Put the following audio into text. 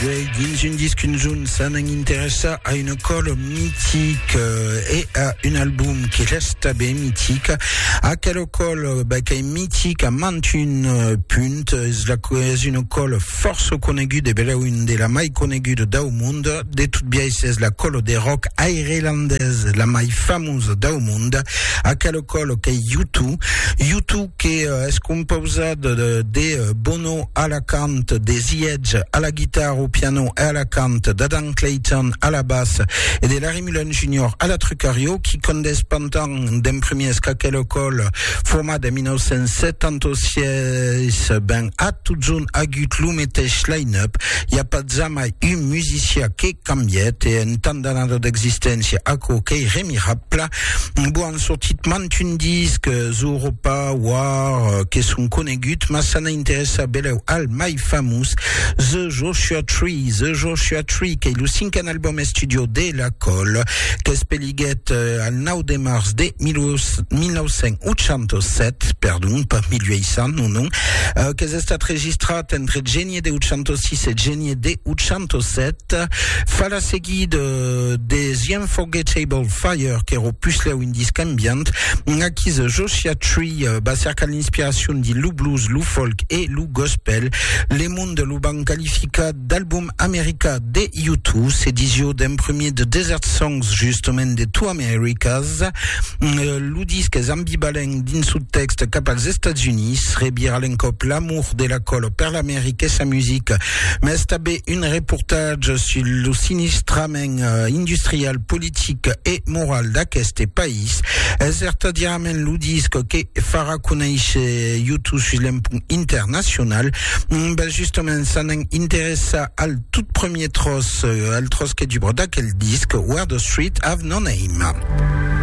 Jai dins un disc un junt s'anan interessar a una còla mitica e a un album que resta ben mitic. Aquela còla ben, qu'es mitica mant un euh, punt, es, la, es una còla força coneguda, e beleu un de la mai coneguda dau mond. De tot biais es la còla de rock airelandès la mai famosa dau mond. Aquela còla qu'es U2. U2 que euh, es compausada de, de euh, Bono, piano, a la cant de The Edge, a la guitar, au piano e a la cant d'Adam Clayton, a la bas, e de Larry Mullen Junior, a la trucario, qui condés pantan d'en premiers qu'aquela còl formada en 1976 ben a totjorn agut lo meteis line-up, i a pas jamai un musicià que. cambièt e en tant d'anada d'existéncia aquò qu'ei remirabla, bo an sortit mantun disc, Zooropa, War, que son conegut, mas s'an a interessar belèu al mai famós, The Joshua Tree, The Joshua Tree, qu'ei lo cinquen album estudio de La Colle, qu'espeliguèt al 9 de març de 1987, perdon, pas 1800, non, non, qu'es estat registrat entre Geni, 1806 e genier de 807 fa la seguida de The Unforgettable Fire que era puslèu un disc ambient aquí The Joshua Tree eh, va cercar l'inspiracion de lo blues, lo folk e lo gospel le monde lo van qualificar d'album americà de YouTube se disio d'en premier de Desert Songs justament de Two Americas eh, Lo disc es ambivalent dins son tèxt cap als Estats Units, rebir a l'encòp l'amor de la Colo per l'America e sa musica, mas tanben un reportatge sus lo sinistrament industrial, politic e moral d'aqueste país. Es vertadièrament lo disc que farà conéisher YouTube sus l'empont internacional. Ben justament, s'anèm interessar al tot premier tròç, al tròç que dubra d'aquel disc, Where the Streets Have No Name.